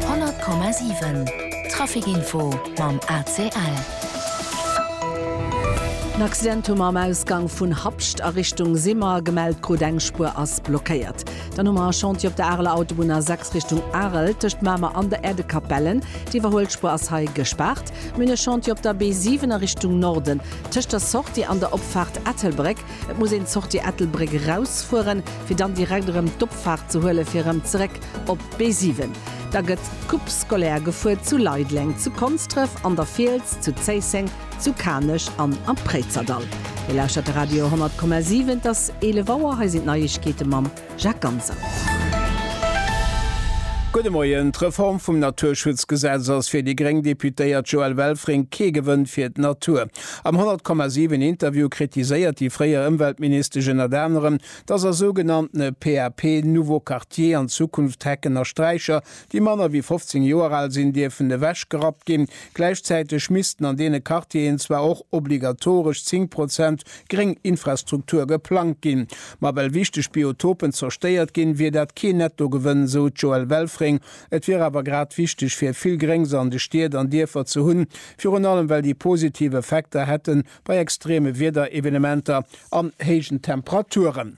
100,7 Traficinfo mam ACL. En Accident hu mer am Ausgang vun Habscht a Richtung Simmer gemellt krut. Eng Spuer ass blockéiert. Dann hu mer e Chantier op der Areler Autobunn A6 Richtung Arel tëscht Mamer an der Erdekapellen. D'Iwwerhuelspuer ass hei gespaart. Mir hunn e Chantier op der B7 a Richtung Norden tëscht der Sortie an der Opfaart Ettelbréck. Et muss een d'Sortie Ettelbréck erausfueren, fir dann direkt erëm d'Opfaart ze huelen, fir erëm zeréck op d'B7. Da gëtt d'Coupe scolaire gefuer zu Leideleng, zu Konsdref, an der Fiels, zu Zéisseng, zu Kanech an am Préizerdahl. Dir lauschtert de Radio 100,7. Et ass 11 Auer. Hei sinn d'Neiegkeete mam. Jacques Ganser. Gudde Moien. D'Reform vum Naturschutzgesetz ass fir déi gréng Deputéiert Joëlle Welfring kee Gewënn fir d'Natur. Am 100,7 Interview kritiséiert déi fréier Ëmweltministesch ënnert anerem, datt a sougenanntene PAP, Nouveaux Quartiers, an Zukunft Hecken a Sträicher déi manner wéi 15 Joer al sinn, dierfen ewechgerappt ginn. Gläichzäiteg missten an deene Quartieren zwar och obligatoresch 10 Prozent gréng Infrastruktur geplangt ginn, ma well wichteg Biotopen zerstéiert ginn, wier dat keen Nettogewënn, esou d'Joëlle Welfring. Et wier awer grad wichteg, fir vill Gréngs an de Stied an Dierfer ze hunn, virun allem well déi positiv Effekter hätte bei extreme Wiederevenementer an héijen Temperaturen.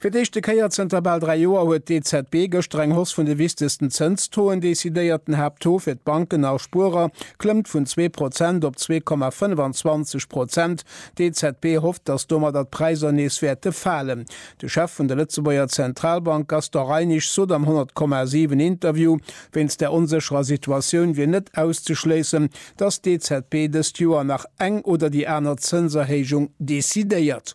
Fir d'éischte Kéier zënter bal dräi Joer huet d'EZB gëschter eng Hausse vun de wichtegsten Zënstoen decidéiert. Den Haapttaux fir d'Banken a Spuerer klëmmt vun zwee Prozent op zwee Komma 25 Prozent. D'EZB hofft, datt domadder d'Präisser nees wäerte falen. De Chef vun der Lëtzebuerger Zentralbank Gaston Reinig sot am 100, 7 Interview, wéinst der onsécherer Situatioun wier net auszeschléissen, datt d'EZB dëst Joer nach eng oder déi aner Zënserhéijung decidéiert.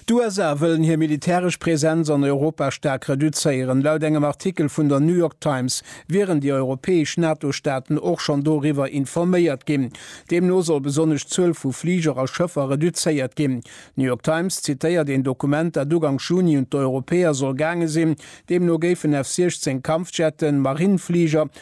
D'USA wëllen hir militäresch Presenz an Europa staark reduzéieren. Laut engem Artikel vun der New York Times wieren déi europäesch NATO-Staaten och schonn doriwwer informéiert ginn. Deemno soll besonnesch d'Zuel vu Fliger a Schëffer reduzéiert ginn. D'New York Times zitéiert een Dokument, dat uganks Juni un d'Europäer soll gaange sinn. Deemno géifen F-16 Kampfjetten, Marinefliger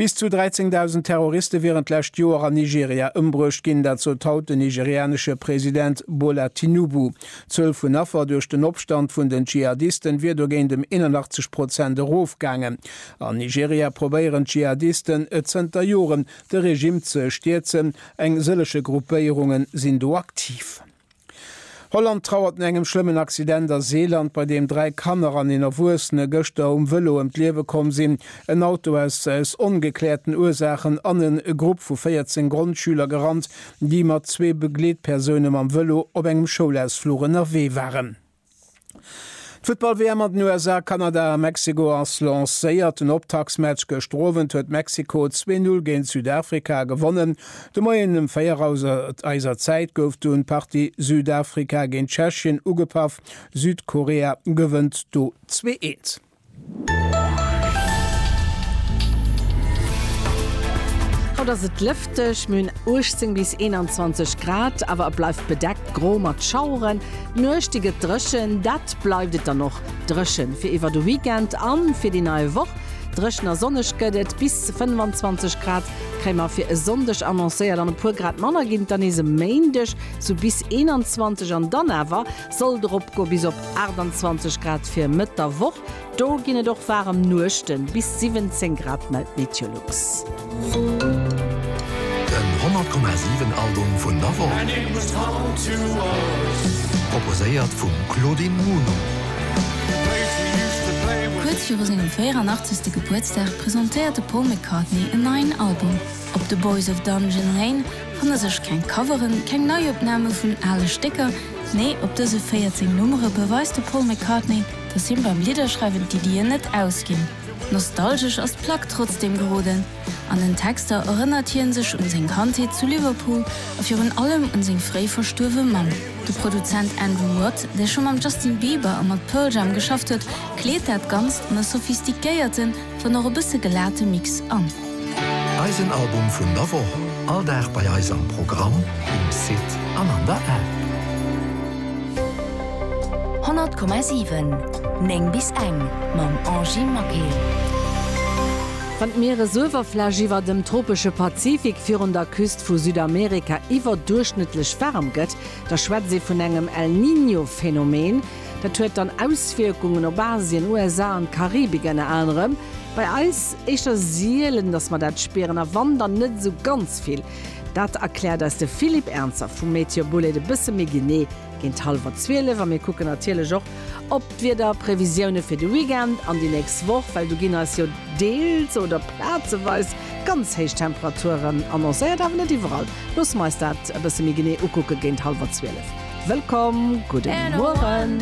Bis zu 13.000 Terroriste wieren d'lescht Joer an Nigeria ëmbruecht ginn. Dat sot haut den nigerianesche President Bola Tinubu. D'Zuel vun Affer duerch den Opstand vun den Dschihadisten wier dogéint ëm 81 Prozent erofgaangen. An Nigeria probéieren d'Dschihadisten et zënter Joren, de Regimm ze stierzen. Eng sëllege Gruppéierunge sinn do aktiv. Holland trauert no engem schlëmmen Accident a Seeland, bei deem dräi Kanner an een Erwuessene gëschter um Vëlo ëm d'Liewe komm sinn. En Auto ass aus ongekläerten Ursaachen an e Grupp vu 14 Grondschüler gerannt, déi mat zwee Begleetpersoune mam Vëlo op engem Schoulausfluch ënnerwee waren. D'Futtball-WM an den USA, Kanada a Mexiko ass lancéiert. Den Optaktsmatch gëschter Owend huet Mexiko 2-0 géint Südafrika gewonnen. De Moien ëm 4 Auser eiser Zäit gouf dunn d'Partie Südafrika géint Tschechien ugepaff. Südkorea gewënnt do 2-1. Haut ass et lëfteg, mir hunn 18 bis 21 Grad, awer et bleift bedeckt gro mat Schaueren. D'Nuecht déi gëtt dréchen, dat bleift et dann och dréche fir iwwer de Weekend a fir déi nei Woch. Dréchen a sonneg gëtt et, bis 25 Grad kréie mer fir e Sonndeg annoncéiert an e puer Grad manner ginn et dann nees e Méindeg, sou bis 21 an dann awer Sollt erop goe bis op 28 Grad fir Mëtt der Woch. Do ginn et och waarem Nuechten, bis 17 Grad mellt Meteolux. Den 100,7 Album vun der Woch proposéiert vum Claudine Muno. Kuerz viru sengem 84. Gebuertsdag presentéiert de Paul McCartney en neien Album. Op The Boys of Dungeon Lane fanne sech keng Coveren, keng Neiopname vun ale Stécker, Nee, op dëse 14 Nummere beweist de Paul McCartney, dass him beim Lidderschreiwen d'Iddien net ausginn. Nostalgesch ass d'Plack trotzdeem geroden. An den Texter erënnert hien sech un seng Kandheet zu Liverpool a virun allem un seng fréi verstuerwe Mamm. De Produzent Andrew Watt, dee scho mam Justin Bieber a mat Pearl Jam geschafft huet, kleet dat Ganzt an e sophistiquéierten, dann och e bësse gelate Mix an. Eisen Album vun der Woch, all Dag bei eis am Programm, um Site an an der App. 100,7, 9 bis eng, mam Angie Maquet. Wann d'Mieresuewerfläch iwwer dem tropesche Pazifik virun der Küst vu Südamerika iwwerduerchschnëttlech waarm gëtt, da schwätzt ee vun engem El Niño-Phänomen. Dat huet dann Auswierkungen op Asien, USA an d'Karibik ënner anerem. Bei eis éischter sielen, datt mer dat spieren a wann, dann net esou ganz vill. Dat erkläert eis de Philippe Ernzer vu MeteoBulleit e bësse méi genee géint hallwer 12. A mir kucken natierlech och op d'Wiederprevisioune fir de Weekend an déi nächst Woch, well do ginn eis jo deels oder plazeweis ganz héich Temperaturen annoncéiert, awer net iwwerall. Loosse mer eis dat e bësse méi genee ukucke géint hallwer 12. Wëllkomm, gudde Mueren.